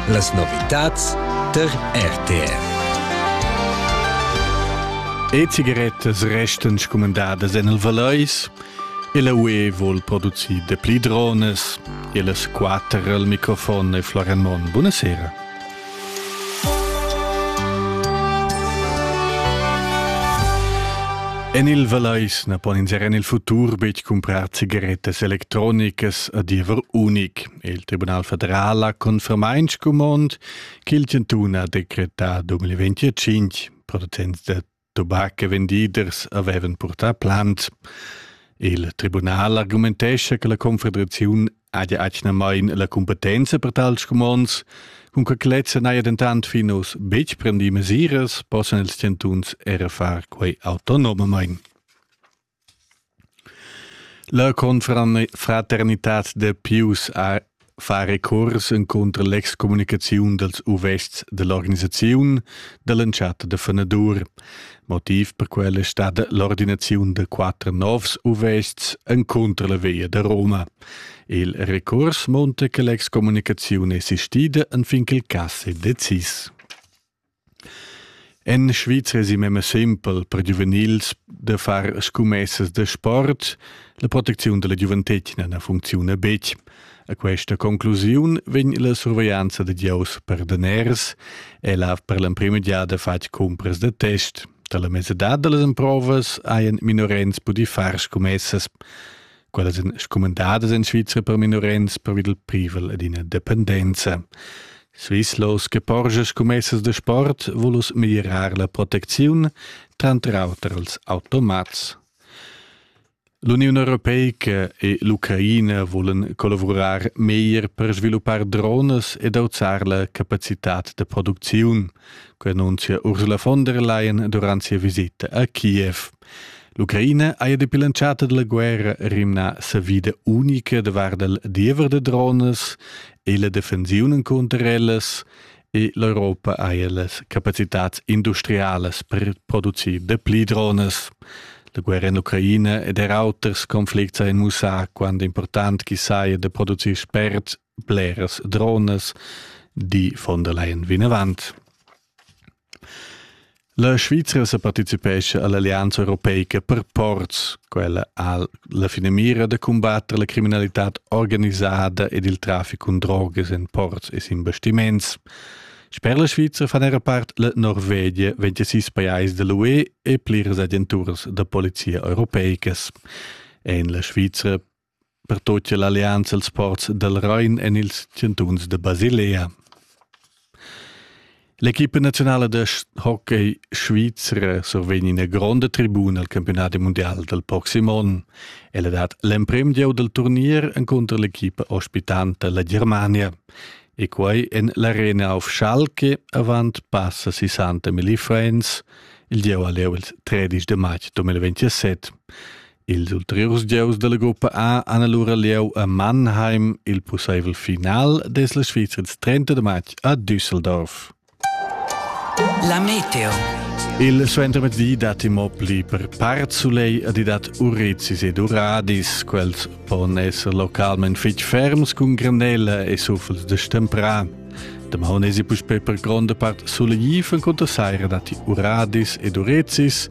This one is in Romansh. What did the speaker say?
Las novitads tar RTR. E cigarettas restan scumandadas en il Valeis e la UE vuol producir de pli drones. E las quatter al microfon e Florian Monn. Buonasera. En il Vallais na pon ins er en il futur betg cumprar cigarettas electronicas a diever unic. Il Tribunal federal ha confermà in scumond ch'il chantun ha decretà 2025. Producents da tobac e vendiders avevan purtà plant. Il tribunal argumentescha che la Confederaziun haja atgnamain la competenza per tals scumonds, cun che lezza n'haja dentant fin oz betg prendì mesiras, possan ils chantuns era far quai autonomamain. La confraternitad da Pius ha fa recuors encunter l'excommunicaziun dals uvests dell'organisaziun dall'entschatta da fenadur. Motiv per quella è stata l'ordinaziun da quatter novs uvests encunter la via da Roma. Il recurs monta che l'excommunicaziun è sistida anfin che il cass è decis. En Svizra esi memia sempel per giuvenils da far scumessas da sport. La protecziun dalla giuventetgna na funcziuna betg. A questa conclusiun vegn la surveglianza da gieus per daners. El ha per l'emprima giada fatg cumpras da test. Dalla mesadad da las emprovas hajan minorens pudì far scumessas. quellas èn scumandadas en Svizra per minorenns pervi dal privel ed ina dependenza. Svizlos che porscha scommessas da sport vulus miglirar la protecziun, tranter auter als automats. L'Uniun Europeica e l'Ucraina volen collavurar meglier per sviluppar drones ed auzar la capacitad da producziun, quei annunzia Ursula von der Leyen durant sia visita a Kiev. L'Ucraina haja dapi l'entschatta da la guerra rimnà savida unica da vart dal diever da dronas e la defensiun encunter ellas e l'Europa haja las capacitads industrialas per producir dapli dronas. La guerra en l'Ucraina ed er auters conflicts hajan mussà quant important ch'i saja da producir spert bleras dronas, di von der Leyen vinavant. La Svizra sa partecipescha all'Allianza Europeica per ports, quella ha la finamira da combattere la criminalità organizzata ed il traffico in drogas in ports e in bastiments. Sper la Svizra fan era part la Norvegia 26 pajais dell'UE e pliras agenturas da polizia europeicas. En la Svizra pertut che l'allianza els ports dal Rain en ils chantuns da Basilea. L'equipa nazionala de hockey Svizra survegn ina gronda tribuna al campionat mondial del proxim onn. Ella dat l'emprim gieu del turnier encontro l'equipa ospitanta la Germania e quei en l'arena auf Schalke avant passa 60 Milli Friends il gieu a leu il 13 de maig 2027. Ils ulteriurs gieus dalla gruppa A han allura lieu a Mannheim il pusseivel final des la Svizra ils 30 de matg a Düsseldorf. La Meteo. Il suentermezdi datti mo pli per part sulei ad i dat Urizis ed Uradis. Quels pon esser localment fitg ferms cun granella e suffels de stemprà. Demà esi puspè per gronda part sulegif en conta saira datti Uradis ed Urizis